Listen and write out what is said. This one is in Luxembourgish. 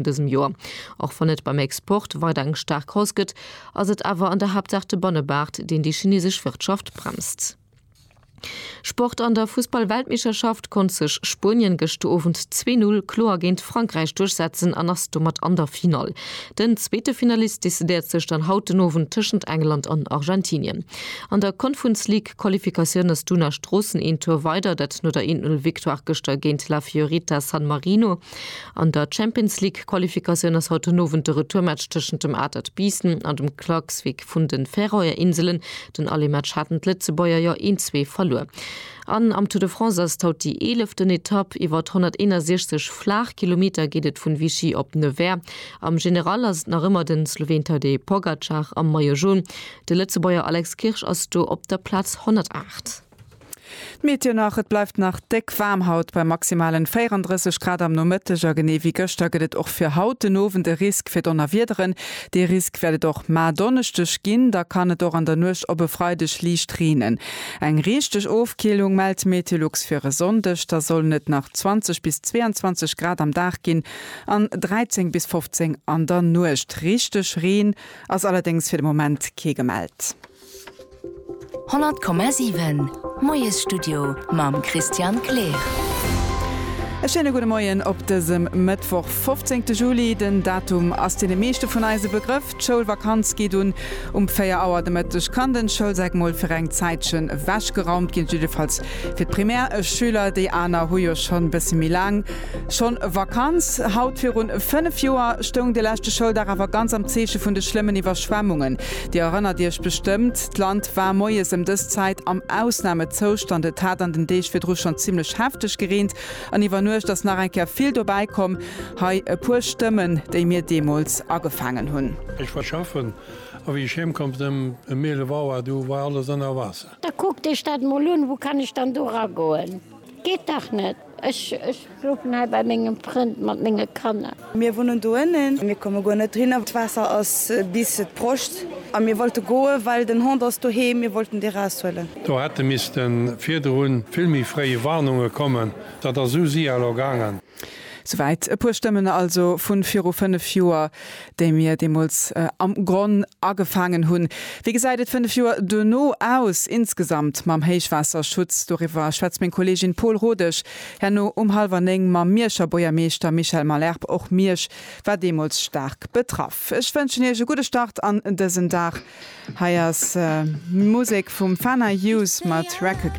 dësem Joer. Och wann et beim Export weider eng staark Hausse gëtt, ass et awer an der Haaptsaach de Bannemaart, deen déi chinesesch Wirtschaft bremst. Sport, An der Fussball-Weltmeeschterschaft konnt sech Spuenien gëscht de Owend zwee Null kloer géint Frankräich duerchsetzen an ass domat an der Finall. Den zweete Finalist decidéiert sech dann haut den Owend tëschent England an Argentinien. An der Konfunsleague-Qualifikatioun ass d'Una Stroossen een Tour weider, dat no der Eent-Null-Victoire gëschter géint La Fiorita San Marino. An der Champions League-Qualifikatioun ass haut den Owend de Retourmatch tëschent dem Atert Biissen an dem Klaksvík vun den Färöer Inselen. Den Allematch haten d'Lëtzebuerger jo een zwee verluer. An am Tour de France ass et haut déi eeleften Etapp. Iwwert 161 Flaachkilometer geet et vun Vichy op Nevers. Am General ass et nach ëmmer den Sloween Tadej Pogacar am Maillot Jaune. De Lëtzebuerger Alex Kirsch ass do op der Plaz 108. D'Meteo nach, Et bleift nach déck waarm haut bei maximalen 34 Grad am Nomëtteg a genee wéi gëschter gëtt et och fir haut den Owend e Risk fir Donnerwiederen. Dee Risk wäert et och mar Donneschdeg ginn, da kann et och an der Nuecht op e Freideg liicht reenen. Eng richteg Ofkillung mellt d'Meteolux fir e Sonndeg, da sollen et nach 20 bis 22 Grad am Dag ginn an 13 bis 15 an der Nuecht. Richteg Reen ass allerdéngs fir de Moment kee gemellt. 100,7 Moiesstudio mam Christian Kleer. E schéine gudde Moien op dësem Mëttwoch, 15 Juli. Den Datum ass deene meeschte vun eis e Begrëff. D'Schoulvakanz geet un. Um 4 Auer de Mëtteg kann den Schoulsäck mol fir eng Zäitche wechgeraumt ginn, jiddefalls fir d'Primärschüler. Déi aner hu jo schonn e bësse méi laang schonn Vakanz. Haut virun 5 Joer stoung de leschte Schouldag awer ganz am Zeeche vun de schlëmmen Iwwerschwemmungen. Dir erënnert Iech bestëmmt, d'Land war moies ëm dës Zäit am Ausnamezoustand. Et hat an den Deeg virdru schonn zimmlech hefteg gereent an iwwer Nuecht ass nach eng Kéier vill dobäi komm. Hei e puer Stëmmen, déi mir deemools agefaangen hunn. Ech war schaffen, a wéi ech heem komm sinn ëm eelef Auer, du war alles ënner Waasser. Da kuckt Iech dat emol un, wou kann ech dann do eragoen? Geet dach net! Ech schlofen hei bei mengem Frënd mat menge Kanner. Mir wunnen do ënnen. Mir komme guer net erinner. D'Waasser ass bis d'Broscht a mir wollte goen, well den Hond ass doheem. Mir wollten dee raushuelen. Do hätte misste virdrun vill méi fréi Warnunge kommen. Dat ass esou si elo gaangen. Souwäit e puer Stëmmen also vu viru fënnef Joer. déi mir deemools am Gronn agefaangen hunn. Wéi gesäit et fënnef Joer duerno aus, insgesamt mam Héichwaasserschutz? Doriwwer schwätzt meng Kolleegin Paule Rodesch herno um hallwer néng mam Mierscher Buergermeeschter Michel Malherbe. Och Miersch war deemools staark betraff. Ech wënschen Iech e gudde Start an dësen Dag. Hei ass Musek vum Fana Youth mat Recognize.